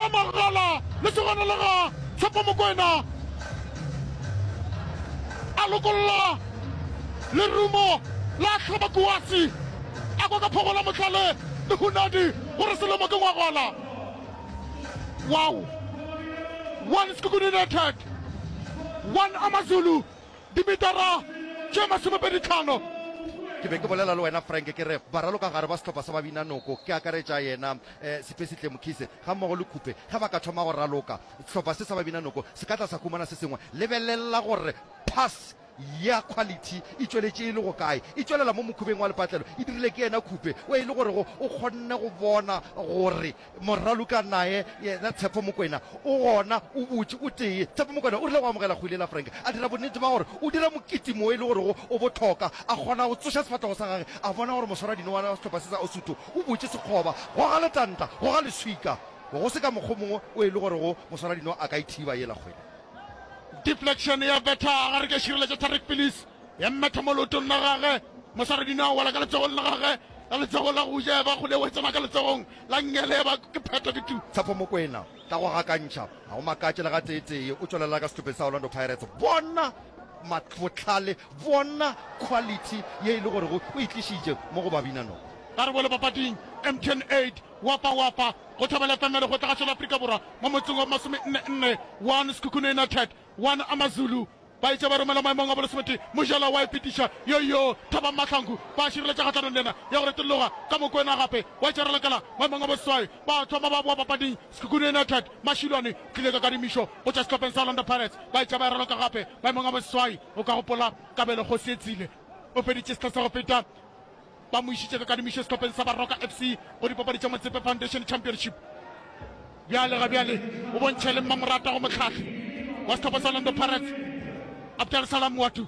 a magala lesogana la ga Tshepo Mokwena a lokolola lerumo la hlaba kuasi a kwa ka phogola motlale le hunadi gore selemo ke ngwagola wow one Sekhukhune United one Amazulu dimetara tše masomepedi tlhano Ke be ke bolela le wena Frank ke re ba raloka gare ba sehlopha sa Babinanoko ke akaretša yena Sepesihle Mkhise gammogo le Khupe ge ba ka thoma go raloka, sehlopha se sa Babinanoko se ka tla sa humana se sengwe. Lebelela gore pass ya quality e tšweletše e le go kae. E tšwelela mo mokhubeng wa lepatlelo, e dirile ke yena Khupe o e le gore go o kgonne go bona gore moraloka naye yena Tshepo Mokwena o gona, o butše, o tee. Tshepo Mokwena o rile go amogela kgwele la Frank, a dira bonnete ba gore o dira mokete mo e le gorego o bohloka, a kgona go tsoša sefahlego sa gage, a bona gore moswaradinowa wa sehlopha se sa Osuthu O butše sekgoba, go ga letanta, go ga leswika. Go se ka mokgwa o mongwe o e le gorego moswaradino a ka e thiba yela kgwele. Deflection ya betha gare ka širela tša Tariq Pilis, ya mmetha mo leotong la gage. Moswaradino a wela ka letsogong la gage la letsogo la go ja, eba kgole eo e tsena ka letsogong la Ngele, eba ke phetho ke tu. Tshepo Mokwena, ka go gakantšha, ga go makatše le gateetee, o tšwelela ka sehlopeng sa Orlando Pirates. Bona bohlale Bona quality ye e le gorego o e tlišitše mo go Babinanoko. Karabelo papading, Emtn Aid, Wapa Wapa, go Thobela FM ya Lekgotla Kgašo la Afrika Borwa mo motseng wa masomenne nne, one Sekhukhune United, one AmaZulu, ba etše ba romela maemong a bolesometee Mojela wa Ipitiša, yoyo Thabang Mahlangu ba šireletša kgahlanong le yena ya go retologa ka Mokwena gape wa etša Ralekala maemong a boseswai, ba thoma ba boa papading. Sekhukhune United, Mashilwane, o tlile ka kadimišo go tšwa sehlopheng sa Orlando Pirates, ba etša ba e raloka gape maemong a boseswai. O ka gopola Kabelo Kgosi Etsile o feditše sehla sa go feta ba mo išitše ka kadimišo sehlopheng sa Baroka FC go dipapadi tša Motsepe Foundation Championship. Bjale ga bjale o bontšha e le mmamoratwa go mohlahli wa sehlopha sa Orlando Pirates, Abdel Salam Moatu.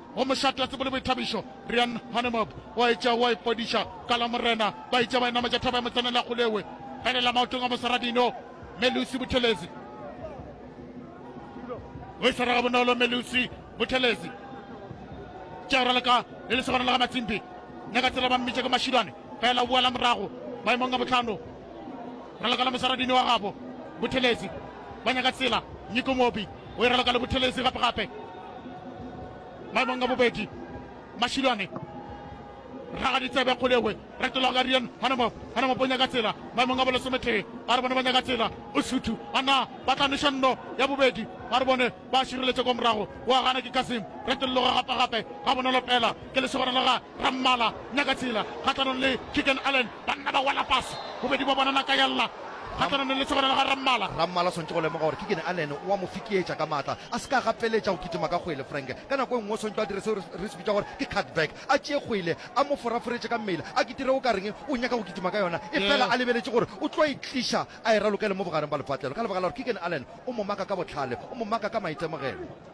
go mošate a tsebo le boithabišo Rian Hanemob o a etša o a ipodiša ka la Morena ba etša ba e nametša thaba ya motsaneng la Kgolewe felela maotong a Mosarabino Melusi Buthelezi o e swara gabonolo Melusi Buthelezi tša rala ka le lesogana la ga Matsimpi nya ka tsela ba mmitša ke Mashidwane fela o boela morago maemong a botlhano rala ka la Mosaradini wa gabo Buthelezi ba nyaka tsela Nyiko Mobi o e rala ka le Buthelezi gape-gape maemong a bobedi mašilwane raga ditsebe kgolegwe retolagarian gona mo gona mo ponya ka tsela maemong a bolosometee a re bone ba nyaka tsela o suthu ana ba tla noša nno ya bobedi ga re bone ba šireletše kwa morago wa gana ke kasim retologa gape gape ga bonolo fela ke lesegona la ga ba mmala nyaka tsela kgahlanong le Keagan Allen, banna ba wela fase, bobedi bja bona naka ya lla kgahlanong le lesogana la ga Rammala. Rammala o swanetše go lemoga gore Keagan Allen o a mo fikietša ka matla, a se ka a gapeletša go kitima ka kgwele. Frank ka nako e nngwe o swanetše go a dira seo re se bitšago gore ke cutback, a tšee kgwele a mo foraforetše ka mmele, a kitire o ka reng o nyaka go kitima ka yona efela a lebeletše gore o tlo e tliša a e ralokele mo bogareng bja lepatlelo ka lebaka la gore Keagan Allen o mo maka ka bohlale, o mo maka ka maitemogelo.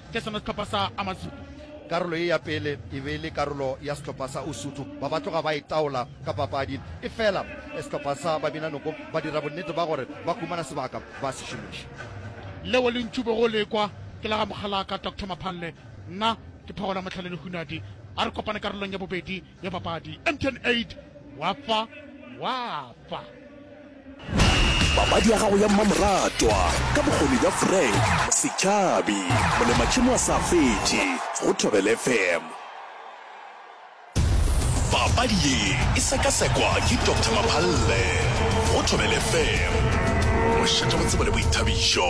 ke sona sehlopha sa Amazulu. Karolo ye ya pele e be e le karolo ya sehlopha sa Usuthu, ba ba tloga ba itaola ka papadi. Efela sehlopha sa Babinanoko ba dira bonnete ba gore ba humana sebaka ba se šomiša. Leo le ntšube go le kwa ke la ga mogalaka Doctor Maphalle, nna ke Phagola Mohlale Lehunadi. A re kopane karolong ya bobedi ya papadi. MTN 8, Wa fa, wa fa. Papadi ya gago ya mmamoratwa ka bokgoni bja Frank Setšhabi, molematšhemo a sa fetše go Thobel FM. Papadi ye e sekasekwa ke Doctor Maphalle go Thobel FM. Mošate go tsebo le boithabišo.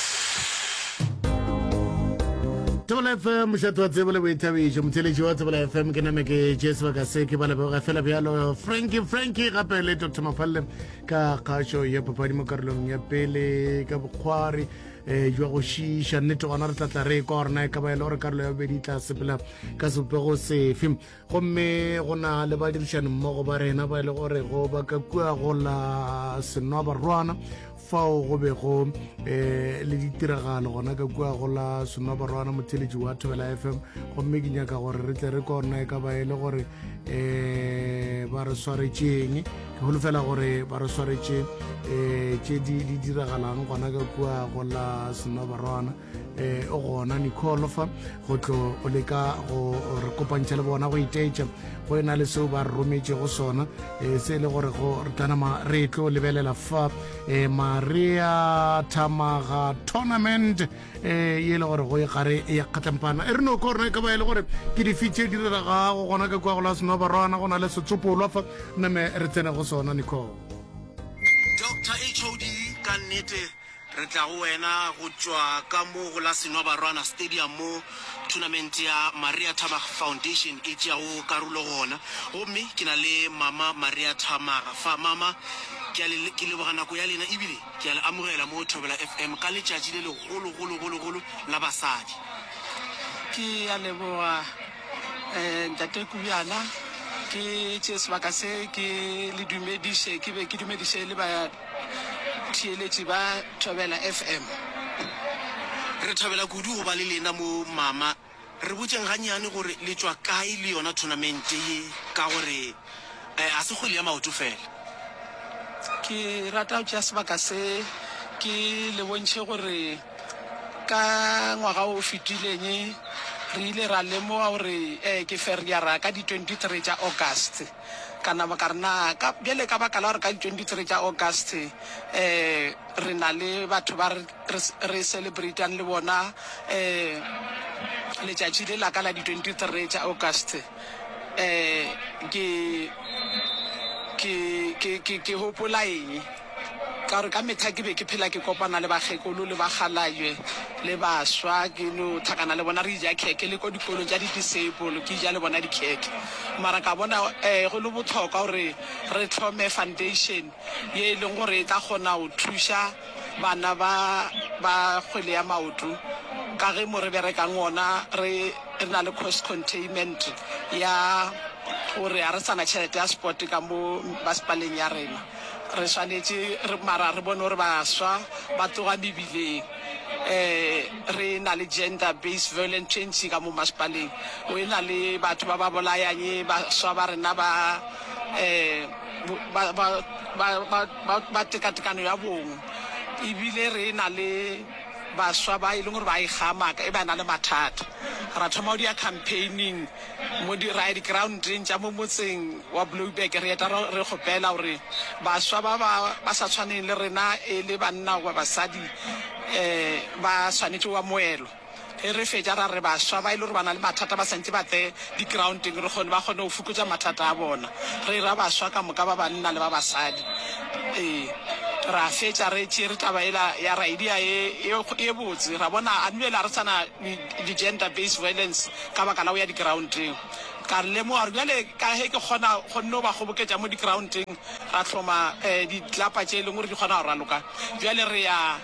thobela fm mošato wa tsebo le boithabišo motheletši wa thobela fm ke name ke tše sebaka se ke ba leboga fela bjalo franki franki gape le dr mafalle ka kgašo ya papadi mo karolong ya pele ka bokgwari um jwa go šiiša nnete gona re tlatla re e kwa gorena e ka ba e le gore karolo ya bobedi e tla sepela ka sebopego sefe gomme go na le badirišanimmogo ba rena ba e le gorego ba ka kua go la senwa barwana fao go bego um le ditiragalo gona ka kua go la senwa barwana motheletši wa thobela f m gomme ke nyaka gore re tle re kona e ka ba e le gore um ba re swaretšeng ke holofela gore ba re swaretše um tše di diragalang gona ka kua go la senwa barwana eh, o gona nicolo fa go tlo o leka go re kopantšha le bona go iteetša go e na le seo ba re rometšego sona um se e le gore go re tlanama re tlo lebelela fa um maria thamaga tournament um e le gore go e gare e ya kgatlampana e re no korna e ka ba e le gore ke difi tše di reragago gona ka kwa go la senoba rwana go na le setsopolwa fa name re tsene go sona nicole dr hod ka nnete Re tla go wena go tšwa ka mo go la Senwa Barwana Stadium mo thunamente ya Maria Thammaga Foundation e tšeago karulo gona. Gomme ke na le Mama Maria Thammaga fa. Mama, ke a le, ke leboga nako ya lena ebile ke a le amogela mo Thobela FM ka letšatši le legolo-golo-golo-golo la basadi. Ke a leboga eh, Ntate Kubjana. Ke tšee sebaka se ke le dumediše, ke be ke dumediše le ba Theeletši ba Thobela FM, Re thabela kudu go ba le lena mo mama. Re botšeng gannyane gore le tšwa kae le yona thonamente ye ka gore ga se kgwele ya maoto fela. Ke rata go tšea sebaka se ke le bontšhe gore ka ngwaga o fetileng re ile ra lemoga gore ke feriara ka di 23 tša August. Ka napa ka re, Na ka, bjale ka baka la gore ka di 23 tša August um re na le batho ba re, re, re celebratang le bona um letšatši le la ka la di 23 tša August, um ke, ke, ke, ke, ke gopola eng? Ka gore ka mehla ke be ke phela ke kopana le bakgekolo le bakgalajwe le baswa, ke no thakana le bona, re eja khekhe le ko dikolong tša di-disabled, ke eja le bona dikhekhe. Mara ka bona um go le bohlokwa gore re hlome foundation ye e leng gore e tla kgona go thuša bana ba ba kgwele ya maoto, ka ge mo re berekang ona re re na le cost containment ya gore ga re sa na tšhelete ya sport ka mo masepaleng ya rena. Re swanetše re, mara re bone gore baswa ba tloga mebileng. E, re e na le gender based violent tšentši ka mo masepaleng. O e na le batho ba ba bolayang e baswa ba rena ba, e, ba, ba, ba, ba, ba, ba tekatekano ya bong. Ebile re e na le baswa ba e leng gore ba e kgamaka e ba na le mathata. Ra thoma go dia campaigning Modira dikeraonteng tša mo motseng wa Blouberg, re eta re kgopela gore baswa ba ba ba sa tshwaneng le rena e le banna goba basadi ba swanetše go ba moelo. Ge re fetša ra re baswa ba e le gore ba na le mathata ba santše ba tle dikeraonteng re kgone ba kgone go fokotša mathata a bona. Re e ra baswa ka moka ba banna le ba basadi. Ee, ra fetša re tšere taba yela ya Raidia e e botse, ra bona a nwele a re sa na. di gender based violence ka baka la go ya di groundeng. Ka re lemoga gore bjale ka ge ke kgona go nno ba kgoboketša mo di groundeng ra hloma um di tlapa tše e leng gore di kgona go raloka bjale re ya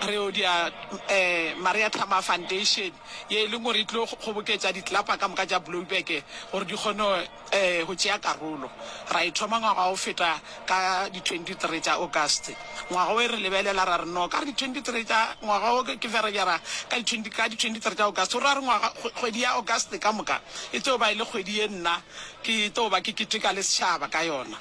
re yo dia um Maria Thamar Foundation ye e leng gore e tlo kgoboketša di tlapa ka moka tša Blowback gore di kgone Ee, go tšea karolo. Ra e thoma ngwaga o feta ka di 23 tša August. Ngwaga wo e re lebelela, ra re, No, ka re di 23 tša, ngwaga wo ke Ferebjara, ka di 20, ka di 23 tša August. O ra re, Ngwaga, kgwedi ya August ka moka e tlo ba e le kgwedi ye nna ke tlo ba ke keteka le setšhaba ka yona.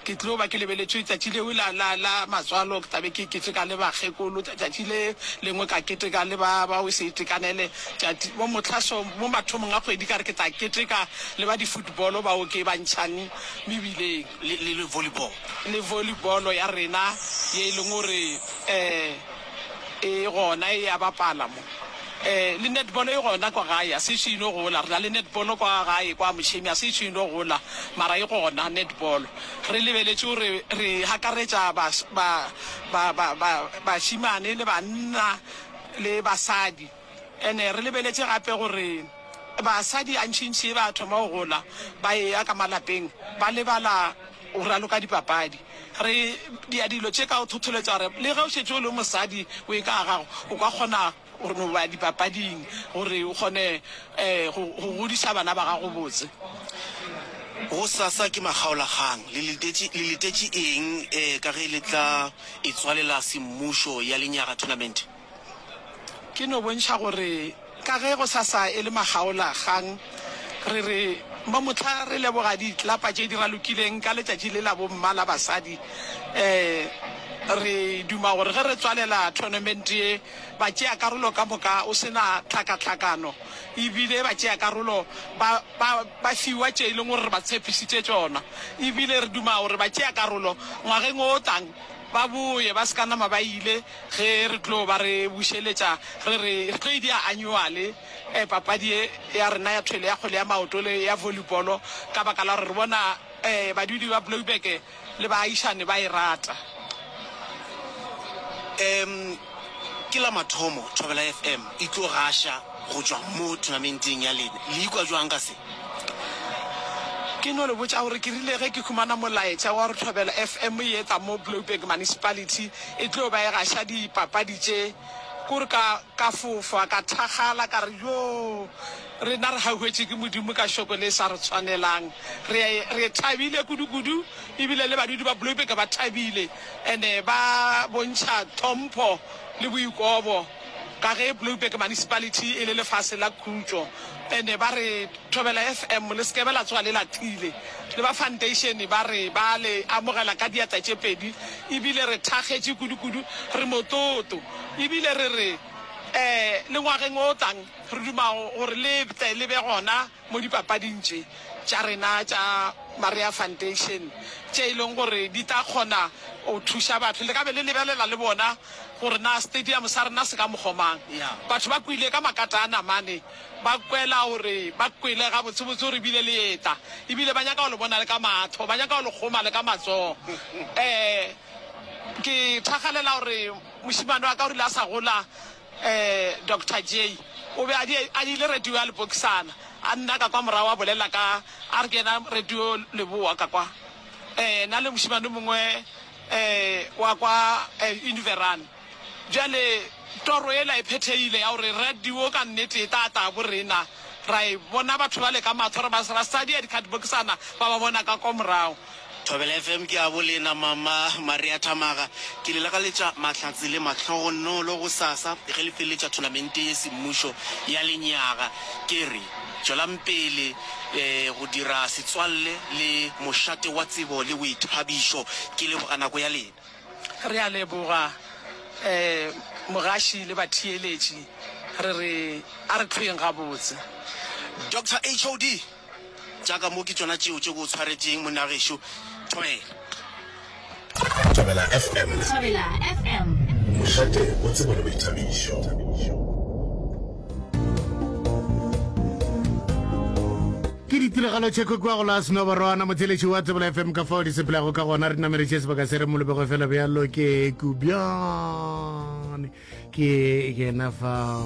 Ke tlo ba ke lebeletše tšatši leo la, la, la matswalo, ke tla be ke keteka le bakgekolo, tša, tšatši le lengwe ka keteka le ba, ba weseitekanele, tšati, mo mohla so, mo mathomong a kgwedi ka re ke tla keteka le ba di-football bao ke ba ntšhang mebileng. Le, le, le volleyball. Le volleyball ya rena ye e leng gore, um. E gona e a bapala mo. Eh, le netball e gona kwa gae, a se ešo ino gola. Re na le netball kwa gae kwa Mošemi, a se ešo ino gola, mara e gona netball. Re lebeletše gore re hakaretša bas-, ba, ba, ba, ba, bašemane le banna le basadi. Ene re lebeletše gape gore basadi gantšintši ba thoma go gola ba eya ka malapeng ba lebala go raloka dipapadi. Re dia dilo tše ka go thotholetša gore le ge o šetše o le mosadi o e ka ga gago, o ka kgona go no ba dipapading gore o kgone go godiša bana ba gago botse. Gosasa ke makgaolakgang. Le letetše, le letetše eng ka ge le tla etswalela Semmušo ya Lenyaga Tournament? Ke no bontšha gore ka ge go sa sa e le makgaola kgang, re re mo mohla re leboga ditlapa tše di ralokileng ka letšatši le la bomma la basadi. Um re duma gore ge re tswalela tournament ye, batšeakarolo ka moka o se na tlhakatlhakano e bile batšeakarolo ba ba ba fiwa tše e leng gore re ba tshepisitše tšona e bile re duma gore batšeakarolo ngwageng o tlang ba boye ba se ka nama ba ile Ge re tlo ba re bušeletša, re re re tlo idea anyuale, papadi ye ya rena ya thwele ya kgwele ya maoto le ya volibolo ka baka la gore re bona badudi ba Bloubeke le baagišane ba e rata. Em, ke la mathomo Thobela FM e tlo gaša go tšwa mo thunamenteng ya lena. Le ikwa jwang ka se? Ke no le botša gore ke rile ge ke humana molaetša wa gore Thobela FM e etla mo Bloubeke Municipality, E tlo ba e gaša dipapadi tše. Kore ka, ka fofa, ka thakgala, ka re, Yoo! Rena re hauhwetše ke Modimo ka Šoko le e sa re tshwanelang. Re a e, re e thabile kudu-kudu, ebile le badudi ba Bloeberge ba thabile, and-e ba bontšha tlhompho le boikobo. Ka ge Blouberg Municipality e le lefase la khutšo ene ba re Thobela FM le sekebe la tsoga le lathile le ba foundation ba re ba le amogela ka diatla tše pedi ebile re thakgetše kudukudu re motloto ebile re re um le ngwageng o tlang re duma gore le tle le be gona mo dipapading tše tša rena tša Maria Foundation tše e leng gore di tla kgona go thuša batho. Le ka be le lebelela le bona gore na stadium sa rena se ka mokgwa mang. Batho ba kwele ka makata a namane, ba kwela gore ba kwele gabotsebotse gore ebile le eta, ebile ba nyaka go le bona le ka matho, ba nyaka go le kgoma le ka matsogo. Um ke thakgalela gore mošemane wa ka o rile a sa gola, Doctor Jay o be a di a dile radio ya lepokisana a nna ka kwa morago a bolela ka a re ke yena radio leboa ka kwa na le mošemane mongwe wa kwa univeran bjale toro ela e phethegile ya gore radio ka nnete e tla tla bo rena ra e bona batho ba le ka mathoro ba sa di a dikgatibokisana ba ba bona ka kwa morago Thobela FM ke a bolena mama Maria Thamaga ke le lakaletša mahlatse le mahlogonolo go sasa ge le feletša thonamente ye semmušo ya lenyaga ke re tšwelampele go dira setswalle le mošate wa tsebo le boithabišo ke leboga nako ya lena. Re a leboga mogaši le batheeletši re re a re tlhoeng gabotse. Doctor HOD Tša ka mo ke tšona tšeo tše ke o tshwaretšeng, monna gešo. Thobela. Thobela FM. Thobela FM. Mošate o tsebo le boithabišo. ke ditiragalo tše kwekiwa go la senoborwana motheletši wa tsebela fm ka fao di sepelago ka gona re nameletše sebaka se re molobego fela bjalo ke kubjane ke yena fa